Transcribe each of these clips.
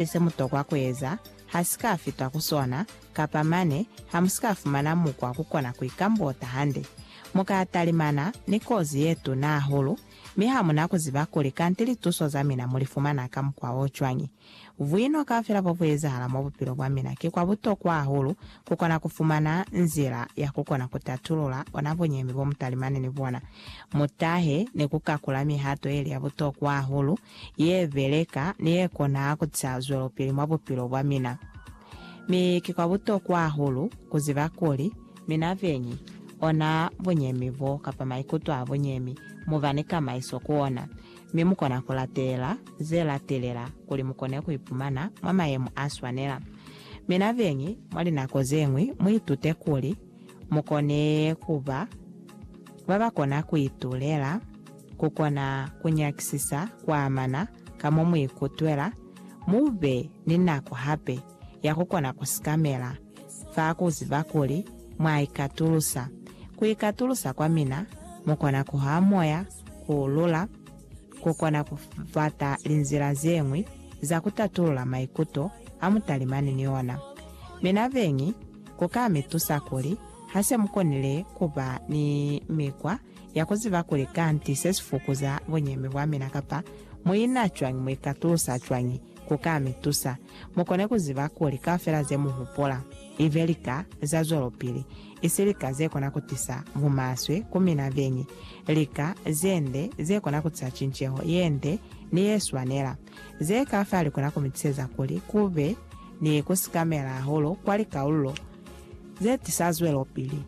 se mu tokwa ku eza ha si ka fita ku sona, kapa mane ha mu si ka fumana mukwa ku kona ku ikambota hande, mu ka talimana ni kozi ye tuna hahulu, mi ha mu na ku ziba kuli kanti lituso za mina mu li fumana ka mukwa o cwañi. Buino kaufela bo bu ezahala mwa bupilo bwa mina ki kwa butokwa hahulu ku kona ku fumana nzila ya ku kona ku tatulula ona buñemi bo mu talimani ni bona. Mu tahe ni ku kakula mihato ye li ya butokwa hahulu ye beleka ni ye kona ku tisa zwelopili mwa bupilo bwa mina. Mi ki kwa butokwa hahulu ku ziba kuli, mina beñi, ona bunyemi bo kapa maikuto a bunyemi mu ba ni kamaiso ku ona, mi mu kona ku latelela ze latelela kuli mu kone ku ipumana mwa mayemo a swanela. Mina beñi, mwa linako ze ñwi mu itute kuli, mu kone ku ba ba ba kona ku itulela, ku kona ku nyakisisa ku amana ka mo mu ikutwela, mu be ni nako hape ya ku kona ku sikamela fa ku ziba kuli mwa ikatulusa. Ku ikatulusa kwa mina, mu kona ku ha moya, ku lula, ku kona ku bata linzila ze ñwi za ku tatulula maikuto a mu talimani ni ona. Mina beñi, ku ka mi tusa kuli ha se mu konile ku ba ni mikwa ya ku ziba kuli kanti se si fukuza bunyemi bwa mina kapa mu ina cwañi, mu ikatusa cwañi. Ku ka mi tusa mu kone ku ziba kuli kaufela ze mu hupula i be lika za zwelopili, isi lika ze kona ku tisa bumaswe ku mina beñi, lika ze nde ze kona ku tisa cinceho ye nde ni ye swanela. Ze ka fa li kona ku mi tuseza kuli ku be ni ku sikamela hahulu kwa likaululo ze tisa zwelopili.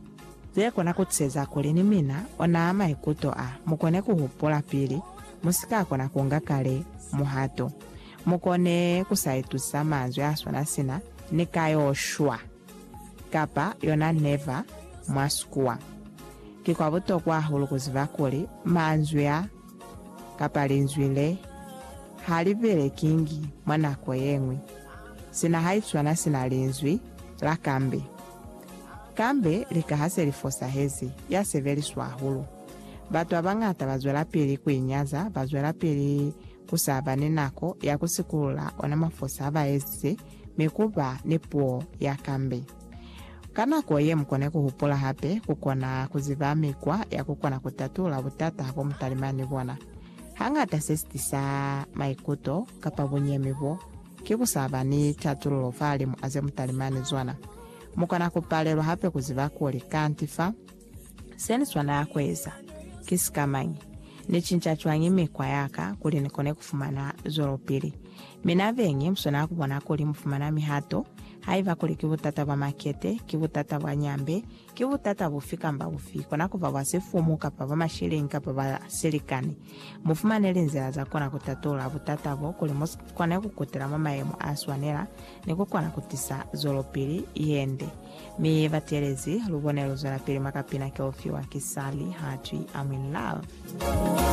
Ze kona ku tuseza kuli ni mina onaa maikuto a mu kone ku hupula pili mu si ka kona ku nga kale muhato. Mu kone ku sa itusisa manzwi a swana sina ni ka yo shwa kapa yona neva mwa sikuwa. Ki kwa butokwa hahulu ku ziba kuli manzwi a kapa linzwi le ha li belekingi mwa nako ye ñwi, sina haiswana sina linzwi la kambe. Kambe lika ha se li fosahezi, ya sebeliswa hahulu. Batu ba bañata ba zwelapili ku i nyaza, ba zwelapili ku sa ba ni nako ya ku sikulula ona mafosa a ba ezize, mi ku ba ni puo ya kambe. Ka nako ye, mu kone ku hupula hape ku kona ku ziba mikwa ya ku kona ku tatula butata bo mu talima ni bona. Hangata se si tisa maikuto kapa bunyemi bo ki ku sa ba ni tatululo fahalimu a ze mu talima ni zona. Mu kona ku palelwa hape ku ziba kuli kanti fa Se ni swanela ku eza, Ki sikamañi? Ni cinca cwañi mikwa ya ka kuli ni kone ku fumana zwelopili? Mi na beñi mu swanela ku bona kuli mu fumana mihato, haiba kuli ki butata bwa makete, ki butata bwa nyambe, ki butata bufi kamba bufi, kona ku ba bwa sifumu kapa bwa mashilingi kapa bwa silikani. Mu fumane linzila za kona ku tatulula butata bo kuli mu kone ku kutela mwa mayemo a swanela ni ku kona ku tisa zwelopili ye nde. Mi ba telezi lubone lu zwelapili mwa kapina ke u fiwa ki Sally Hatwi I'm in love.